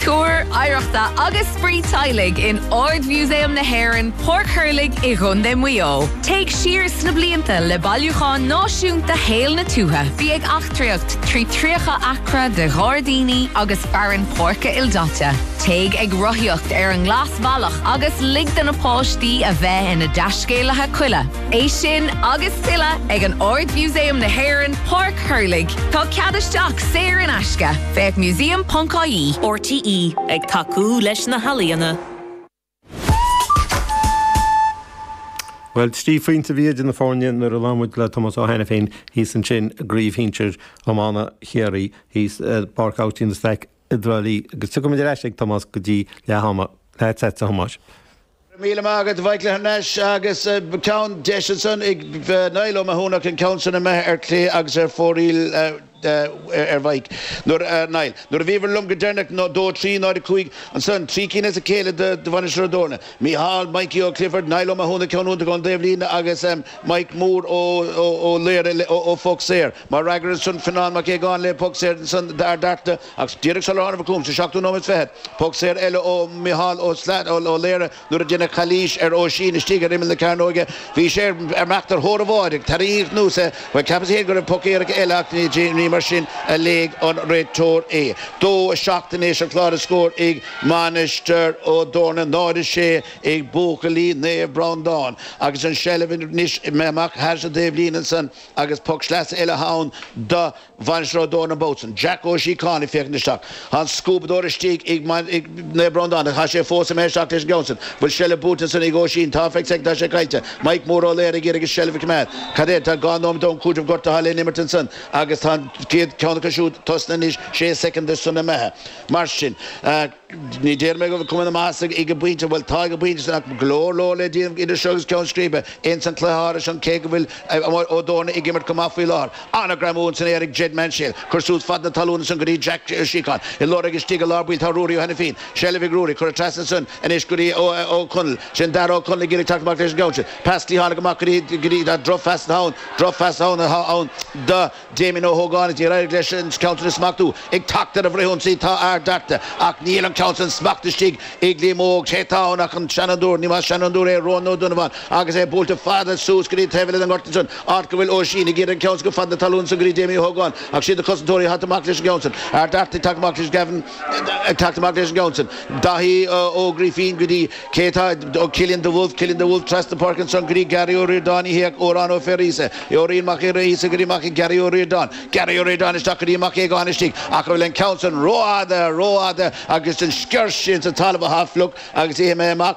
Tar ar oidhreacht agus Spraoi Teaghlaigh in Ard-Mhúsaem na hÉireann, Páirc Thurlaigh i gContae Mhaigh Eo. Téigh siar sna blianta le Bailiúchán Náisiúnta Shaol na Tuaithe. Bí ag eachtraíocht trí 30 acra de ghairdíní agus fearann páirce ildaite. Téigh ag rothaíocht ar an nGlasbhealach agus lig do na páistí a bheith ina dtaiscéalaithe coille. É sin agus tuilleadh ag an Ard-Mhúsaem na hÉireann, Páirc Thurlaigh. Tá cead isteach saor in aisce. Féach museum.ie. RTÉ, ag tacú leis na healaíona. Bhuel, trí phointe a bhí idir na foirne nuair a labhair muid le Tomás Ó hAiniféin thíos ansin i gcraobh shinsir iomána Chiarraí thíos i bPáirc Austin Stack i dTrá Lí agus tiocfaimid ar ais ag Tomás go dtí leath ama. Leatsa, a Thomáis. Go raibh míle maith agat a Mhaic le thar n-ais agus ceann deis ansan ag Niall Ó Mathúna an ceann sin imithe ar clé agus ar fóraoil a Mhaic. Nuair a Niall. Nuair a bhíobhair liom go deireanach ná dó trí náid a cúig ansan trí cinn as a chéile do Mhainistir Ó dTorna. Mícheál, Mikey Ó Clifford, Niall Ó Mathúna ceann iontach ón dtaobh líne agus. Mike Mór Ó Laoire ó phoc saor. Mar fhreagra ar sin, Fionnán Mac Aogáin le poc saor san d'Ard Fhearta agus díreach sular tháinig an cúl, sa seachtú nóiméad fichead, poc saor eile ó Micheál Ó Laoire nuair a deineadh calaois ar Oisín istigh ar imeall na cearnóige. Bhí sé ag imeacht ar thóir an bháide, tarraingíodh anuas é. Bhuel, cheapas féin go raibh poc éirice eile ach ní mar sin a léigh an réiteoir é. Dó a seacht anois ar chlár na scór ag Mainistir Ó dTorna, 0, 6, ag buachaillí Naomh Breándán agus an seilbh anois amach thar an taobhlíne ansan agus poc sleasa eile ann do Mhainistir Ó dTorna an babhta san, Jack Ó Síocháin ag féachaint isteach. Tá an scuabadóir istigh ag Naomh Breándán ach tá sé fós imithe isteach leis an gceann san. Bhfuil seilbh buaite ansan ag Oisín? Tá, feic seic tá sé caillte. Mike Mór Ó Laoire ag iarraidh an seilbh a choimeád. Cad é tá dhá nóimeat ón cúiteamh gortaithe le n-imirt ansan agus tá an chéad ceann acu siúd tosnaithe anois sé soicind de san imithe. Mar sin. Ní déarfaidh mé go bhfuil cuma ana-mhaith ag an bpointe, bhuel tá ag an bpointe san ach go leor leor le déanamh idir seo agus ceann scríbe, ins an cluiche thairis sin cé go bhfuil Ó dTorna ag imirt go maith faoi láthair. Ana-ghreamú ann san aer ag Jed Maunsell, cur suas fad na talún ansan go dtí Jack Síocháin i lár ag istigh i lár baill tá Ruairí Ó hAinifín, seilbh ag Ruairí, cuireadh trasna ansan anois go dtí Ó Conaill, sin Darragh Ó Conaill ag iarraidh teacht amach leis an gceann sin, pas tí tháinig amach go dtí droch phas ann, droch phas ann, ann do. Damien Ó hÓgáin, níor éirigh leis an ceann sin a smachtú. Ag teacht ar an bhfrithionsaí tá Ard Fhearta, ach níl an ceann sin smachtaithe istigh ag Liam Óg. Cé tá ann ach an seanfhondúir, ní mba ach seanfhondúir é, Rónán Ó Donnabháin, agus é buailte fada suas go dtí taobh eile den ghort ansin. Áit go bhfuil Oisín ag iarraidh an ceann sin a chur fad na talún san go dtí Damien Ó hÓgáin, ach siad na cosantóirí ag teacht amach leis an gceann sin. Ard Fhearta ag teacht amach leis, Gavin. Ag teacht amach leis an gceann sin, Daithí Ó Grifín go dtí cé atá ag Cillian de Bhulbh, Cillian de Bhulbh trasna páirce ansan go dtí Gary Ó Ríordáin, a híoc, Odhrán Ó Fearghusa, Odhrán Mac Fhearghusa go dtí amach ag Gary Ó Ríordáin, Gary Ó Ríordáin isteach go dtí Mac Aogáin istigh, ach an bhfuil an ceann san rófhada, rófhada agus an sciorr sin sa talamh athá fliuch agus imithe amach.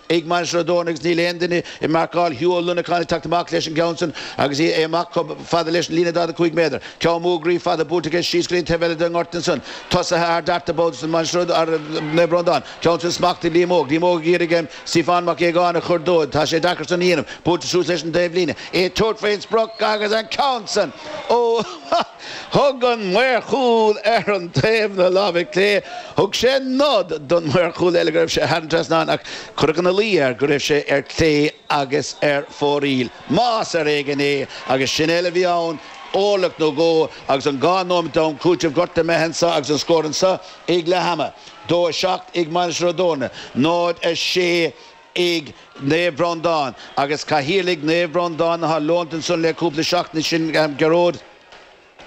Ag Mainistir Ó dTorna agus níl aon duine ag marcáil Hugh Ó Luineacháin ag teacht amach leis an gceann san agus é amach chomh fada leis an líne 45 méadar. Ceann mór groí fada buailte aige síos go dtí an taobh eile den ngort ansan tosaithe Ard Fhearta de bhall den Mhainistir ar Naomh Breandán. Ceann sin smachtaithe ag Liam Óg. Liam Óg ag iarraidh Stiofán Mac Aogáin a chur dó. Tá sé deacair san a dhéanamh. Buailte suas leis an dtaobhlíne é. Tabhairt faoin sprioc agus an ceann san ó Thug an maor cúil ar an taobh na láimhe clé, thug sé nod don maor cúil eile go raibh sé thar an trasnán ach cuireadh ina luí air go raibh sé ar clé agus ar fóraoil, más ar éigin é, agus sin uile a bhí ann, orlach nó dhó agus an dhá nóimeat am cúitimh gortaithe imithe anseo agus an scór anseo ag leath ama, 2, 7 ag Mainistir Ó dTorna, 0, 6. ag Naomh Breandán agus Cathaoirleach Naomh Breandán atá leonta ansan le cúpla seachtaine sin Gearóid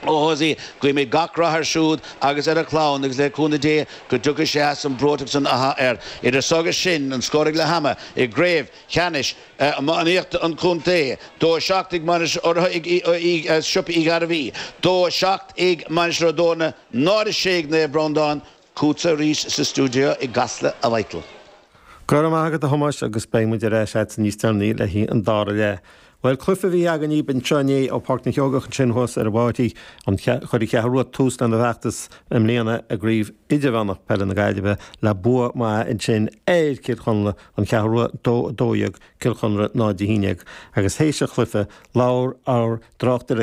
Ó hEosaigh guímid gach rath ar siúd agus ar a chlann agus le cúnamh Dé go dtiocfaidh sé as an mbreoiteacht san athá air. Idir so agus sin an scór ag leath ama i gCraobh Cheannais Iománaíochta an Chontae, 2-7 ag Mainistir urraithe ag Siopa Uí Ghairbhí, 2-7 ag Mainistir Ó dTorna, 0-6 ag Naomh Breandán, Chugatsa arís sa stiúideo i gCasla, a Mhichíl. Go raibh maith agat, a Thomáis, agus beidh muid ar ais agatsa níos deireanaí le haghaidh an dara leath. Bhuel, cluife a bhí againn dhaoibh anseo inné ó Pháirc na Seoigeach ansin thuas ar an Mám, áit ar chuir an Cheathrú Rua tús lena bhfeachtas i mbliana i gCraobh Idirmheánach Peile na Gaillimhe le bua maith ansin ar Cill Chonla, An Cheathrú Rua 2, 12, Cill Chonla 0, 11, agus théis an chluife labhair ár dtráchtaire,